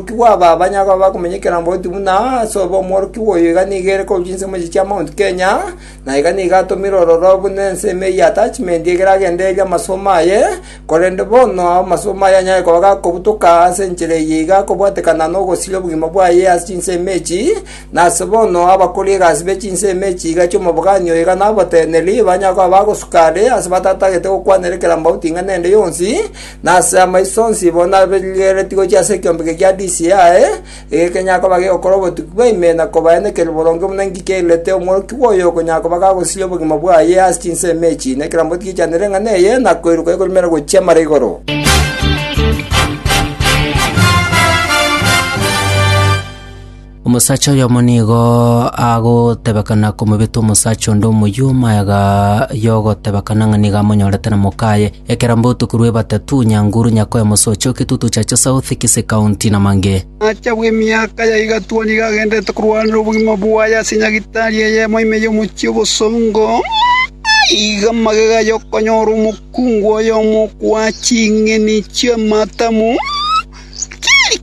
Omworokigwa aba abanyagwa bakomenyekera mbotuti buna ase obe omworokigwa oyo iga nigo ere korwa chinse mochie chia Mount Kenya, na iga nigo atomire ororo buna ensemo eyio attachment ekero agendereire amasomo aye, korende bono amasomo aye anyare koba gakobutoka ase enchera eye iga akobwatekana nogosiria obogima bwaye ase chinsemo echi, na ase bono abakori egasi be chinsemo echi iga chi'omobogani oyo iga naboteneneri, banyare koba bagosuka are ase batatagete gokwana erekera mbauti ing'ana ende yonsi, Na ase amaiso onsi bo nabarigereretie gochia ase ekiombeke kia DCI, ege kenyara koba gegokora obotuki bwa ime na kobae nekerio boronge buna inki kiairerete omworokigwa oyo okonyara koba gagosiria obogima bwaye ase chinsemo echi, na ekeromboti giachanere eng'ana eye, na koiroka ekorumera gochia mara igoro. Omosacha oyomo nigo agotebekana komobeta omosacha onde omoyio omaega y'ogotebekana ng'a nigo amonyorete na mokaye, ekero mbotuko rw'ebatatu, nyanguru, nyakoe, mosocho, kitutu cha chisauthi, kise kaunti, na mange. Omosacha bw'emiaka ya igatua nigo agendererete korwanera obogima bwaye ase nyagitari eyemo ime y'omochie obosongo, aiga magega y'okonyora omokungu oyomo okoa ching'eni chi'amatamu.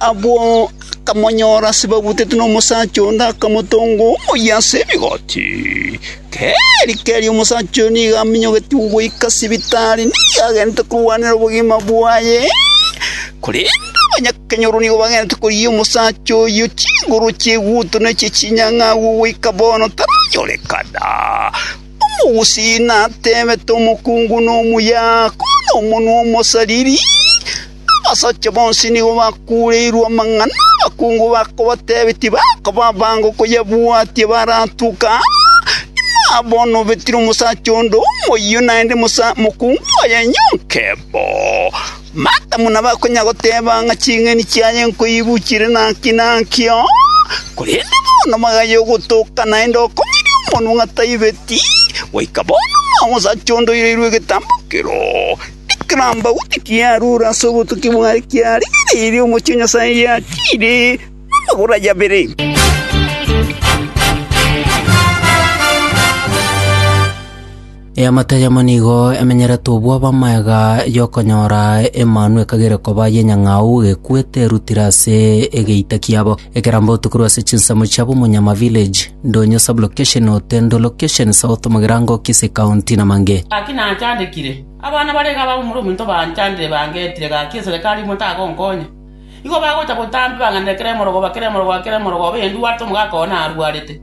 Abwo akamonyora ase babutetwe nomosacha onde, akamotonga omoyia ase rigoti. Keri keri omosacha oyo nigo aminyogetigwe goika sibitari, nigo agenete korwanera obogima bwaye. Korende abanyakenyoro nigo bagenete korigia omosacha oyio chinguru chieguto na echie chinyang'a agwo goika bono taranyorekana. Omogusii natebete omokungu nomuya, Kore nomonwa omosariri. Abasacha bonsi nigo bakuureirwe amang'ana, abakungu bakabatebia tibakaba abange koyabwatia baratoke aa. Inwe abwo nobetire omosacha onde omoyio naende mokungu oye nyonke bo. Matamu nabo akonya goteba ng'a ching'eni chiaye nkoibu chire naki naki oo, korende bono magaye ogotoka naende okomiria omonwa ng'a taibeti, goika bono nomosacha onde oireirwe egetambo kero. Ekerambagu tikiarure ase obotuki bwaye, kiarigereirie omochie o Nyasae giakiire namagoro aye abere. Eamate eyemo nigo emenyerete obw'abamega y'okonyora Emanu ekagere koba y'enyang'au ekwete erutire ase egeita kiabo. Ekerambagu tokorwa ase chinsemo chia Bomonyama Village, Ndonyo Sub-location, Otendo Location, South Mugirango, Kisii County, na Mange. Gaki nachandekire. Abana bare iga abagomura omonto banchandire bangetire gaki eserekari imo tagonkonya. Igo bagocha botambe bang'anere kera emorogoba, kera emorogoba, kera emorogoba eyendwarete omogaka oo narwarete.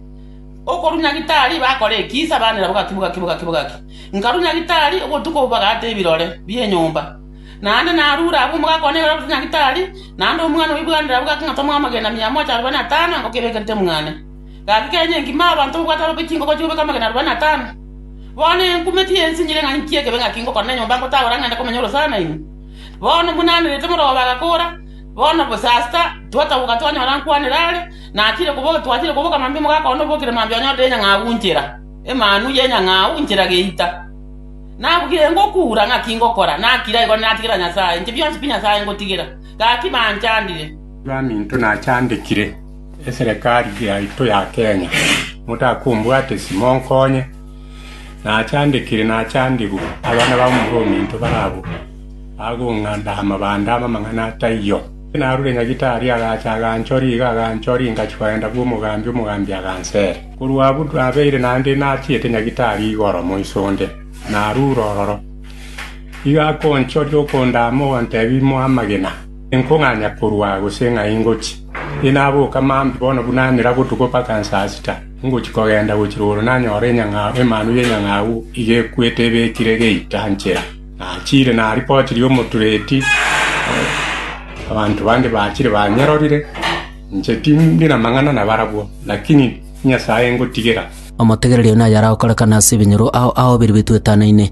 Okorunya gitari bakora ekisa banera bogaki, bogaki, bogaki, bogaki. Nkarunya gitari obotuko obo bagaata ebirore bi'enyomba. Naende narure abwo omogaka one nigo ararunya gitari, naende omwana oibwanera bogaki ng'a tomwamagena mia mocha arobaini na tano engoke ebekerete mwane. Gaki kenya engima abanto babwate ababe chingogo chikobeka amagena arobaini na atano. Bono enkumeti yensinyire ng'a inki ekebe ng'aki ngokora na enyomba ngotagora ng'ende komenya orosana naino. Bono buna anerete morooba agakora, bono bosasta, twataboka twanyora nkwanera are, na achire koboka twachire koboka mambia mogakona obokire mambia onyorire enyang'au inchera, emanu y'enyang'au inchera geita. Nabugire ngokuura ng'aki ngokora, nakira igoro natigera Nyasae, inche bionsi pi Nyasae ngotigera. Gaki banchandire. Baminto nachandekire. Eserekari yaito ya Kenya, motakombwate ase monkonye, nachandekire nachandigwe abana bamorwa ominto barabwo bagong'anda amabande amang'ana atayio. Narure Nyagitari agacha aganchoria iga aganchoria ingachia kogenda bw'omogambi, omogambi agansera. Korwa abwo nabeire naende nachiete Nyagitari igoro moiso onde, narure ororo. Igo akonchoria okondama ogontebia imo amagena, nkong'anya korwa gose ng'ai ngochia. Inaboka maambi bono buna nira botuko mpaka saa sita, ngochia kogenda gochia rogoro nanyore Emanu y'Enyang'au iga ekwete ebekire geita nchera. Nachiire naribotirie omotureti, abanto bande bachire banyerorire, inche tindi namang'ana nabarabwo, lakini Nyasae ngotigera. Omotegereria oyo nayare agokorekana ase ebinyoro ao aobeire bitoetanaine.